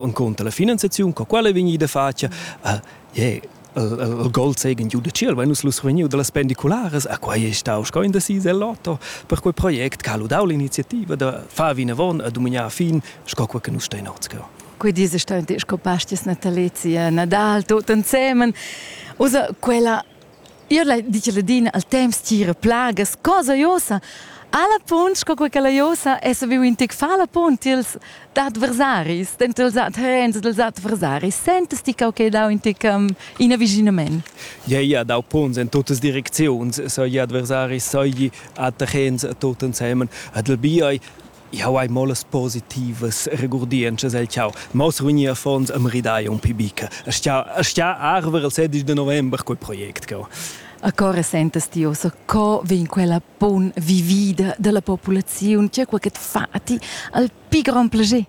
encunter la finanziaziun co quella è vegnida fatga uh, yeah, il gol zeigen giu de ciel, weil nus lus vegniu dallas pendiculares, a quai è stau sco in decis el lotto, per quel project ca ludau l'iniziativa da far vinavon a dumignar fin, sco quel che nus stein otzgau. Quei dis è stau sco pastis natalizia, Nadal, tutto insieme. Usa quella Ir la dice ladina al temps tira plagas, cosa josa. Alla punt, sco quella la josa, es viu in tic fa la punt ils adversaris, dentro els terrens dels adversaris. Sentes ti cau che dau in tic um, in avvicinament? Ja, ja, dau punts in tuttes direcziuns, so gli adversaris, so gli attachens tutten zusammen. Adel biai Jau hai mo las positivas regurdientschas el chau. Ma uss vegni affons a maridai un pi bica. Aschia, aschia arver il 16 de november quei project cau. A co resentas ti ossa co vegn quella bun vivida dalla populaziun? C'è qualche fati al pi grand plager?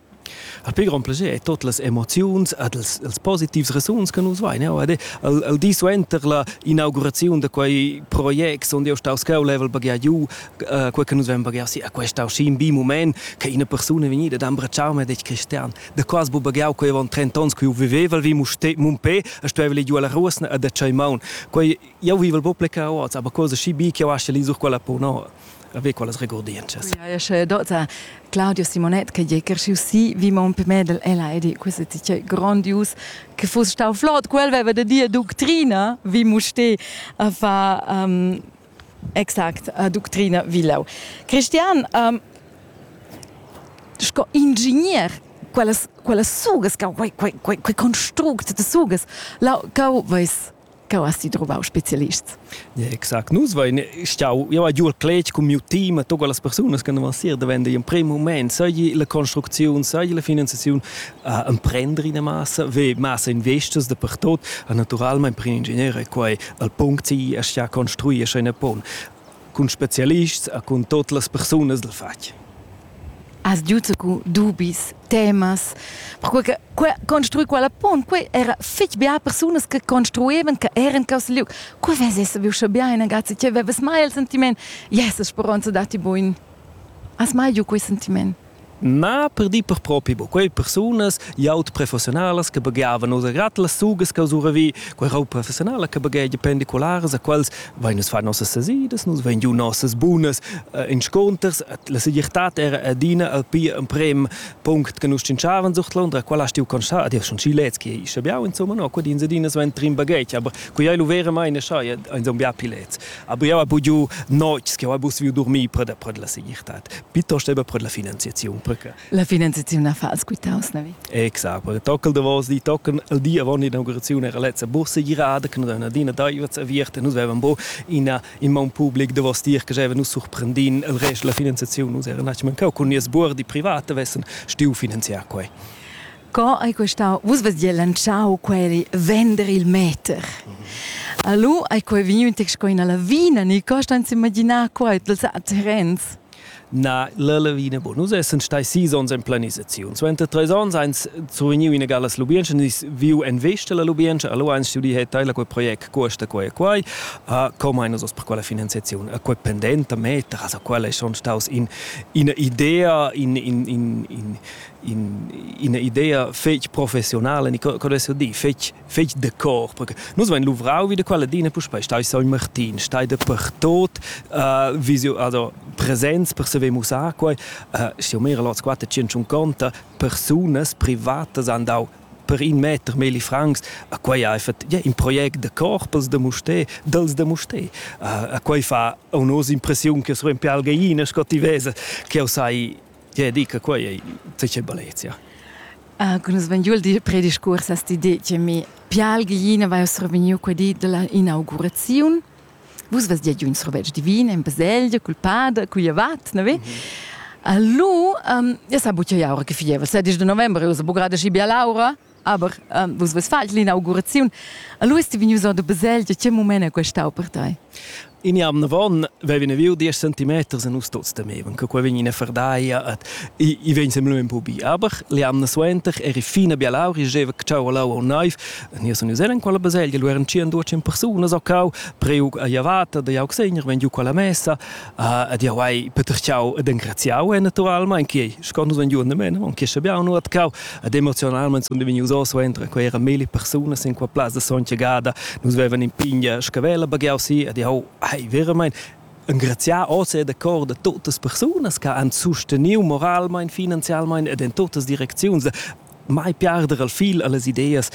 Al pi grand plager è tot las emoziuns ed els, els positivs resuns che nus vain. Jau ed al, al di suenter la inauguraziun da quei project sun jeu staus cheu level baghià giu quei che nus vein baghear si a quest aschi in bi moment che ina persuna vegnida da embratschar me detg cristian da quas bu baghear quei avon 30 ons che io viveval vi muste mumpé e stuevel ir giu alla ruosna a da tschei maun quei jau vivel bo pleca oz aber cosa schi bi che io asche li sur quella pono ave quelles regordientschas. Ja, ja, sche dota Claudio Simonet che je cresciu si vi mon per me del ela edi questo ti che grandius che fosse stau flott quel veva de dir doctrina vi muste a fa um, Exact, a ductrina Vilau. Cristian, um, sco ingegner quellas quellas sugas cau quei quei quei quei construct de sugas la cau veis cau hast du trovau spezialists Exakt, nus vein stau eu a giur cletg cun miu team a todas las persunas che non van sir da vender in prim moment, sai la construcziun, sai la finanziaziun, uh, emprender ina massa, ve massa investas dapertot. Uh, naturalmein per in ingegner è quei al punct si a sia construir ina pon cun specialists e cun tote las persunas del fatg. Has giuto cu dubis, temas, perché que, construi quella pon, que era fitch bia persunas che construevan, che eran cos liug. Cu vesesse viu sche bia in ragazzi, che veves mai il sentiment, yes, speronza dati buin. Has mai giu quei sentiment? Ma per dir per propi, bo, quei persunas jaut professionalas che bagheavan oder grad las sugas che usura vi, quei rau professionala che baghegia pendicularas a quels vein us far nossas sesidas, nus vein giu nossas bunas uh, insconters, la segirtad era adina al pi emprem punct che nus cinciavan sucht Londra, quella stiu constar, adier schon Chilez che isce biau, insomma, no, quedin sedinas vein trin baghegia, aber quei ei lu vera mai ne schai, ein zon bia pilets. Aber eu habe giu nocs che eu habe viu dormir per da per la segirtad, piuttost eben per la finanziaziun, perché La finanziaziun na fa als quitaus, na vi? Exakt, per tockel de vos di tocken il di avant l'inaugurazione era letzte Bourse girada, che noi adina daivat aviert e nus avevam bo ina in man public de vos dir che java nus surprendin il rest la finanziaziun, nus era natsch mancau cun nies buor di private vessen stiu finanziar quei. Co ei questau? Vus vess dir lantschau quei vender il meter. Alu ei quei vegniu in tec sco ina lavina, ni co stan s'imaginar quei dels terrens? Na, la lavina bu. Nus essan stai sis onns en planisaziun. Suenter treis onns eins survegniu ina galas lubientscha, nus viu en vesta la lubientscha, alu eins stuì he teila quei project cuosta quei e quei, uh, com ein nus oz per quella finanziaziun? Uh, quei pendent da meters, uh, quella ei schon staus in, ina idea, in, in, in, in, ina idea fetg professional e co dess dir fetg fetg de cor perché nus vein luvrau wie de quella dina puspei stai soi Martin stai de per tot uh, visio also presenz per se ve musar quei uh, si mehr lot squatte 150 personas privatas han dau per in meter meli francs a quei ha effet ja in project de corpus de musté dels de musté uh, a quei fa unos impressiun che so in pialgeina sco ti vesa che o sai Tge di che quai è tge bellezia. Uh, con es vegniu il di prediscurs a sti di che mi pialgina vai survegniu quei di della inauguraziun. Vus vest ja un survetsch divin in baselgia culpada cuiavat, ne vi? Mm -hmm. Allu, um, ja sa buccia ja ora che fievel, se dis de novembre usa bugada si bia laura. Aber ähm, vus ves falt l'inauguraziun. Allora ti vegnius or de Baselgia, che moment è quest'au per te? In jam von vevin viu 10 centimeters e nus tuts temevan che quei vegn ina fardaia et i i vegn semlu un po bi aber le anna suenter eri fina bia lauri jeva cciau lau un naiv e nia sun useren quella baselgia lu eran 100 ducin persunas o cau preug a javata da jau segner ven giu quella messa Ed jau hai petertgau ed engraziau naturalmein che sco nus ein giuven men, on che schabiau nu atcau ed emozionalment sun vegnius oz entra quei era meli persunas in qua plaz da sontga gada nus vevan in pigna scavella baghiau si ed jau hai veramente engraziar oz e da cor da totas persunas che han susteniu moralmein, finanzialmein ed in totas direcziuns mai piarder al fil alle ideas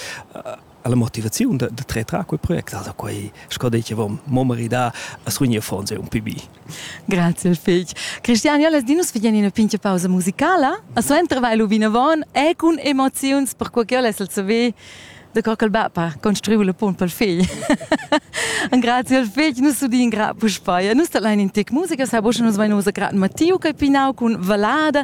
ha la motivaziun da, da trer quel project, also quei sco dei che vom mo maridar a srugner fonse un pibi. Grazie fig. Cristian, io les dinus figien in pinche pausa musicala, a suenter vai lu vinavon e con emoziuns per quel che io les el saver da quel bapa construiu le pont pel figl. Grazie al figl, nus sudin gra puspaia. Nus allein in tec musica, sa bosche nus vai nus a grat Matteo che pinau con valada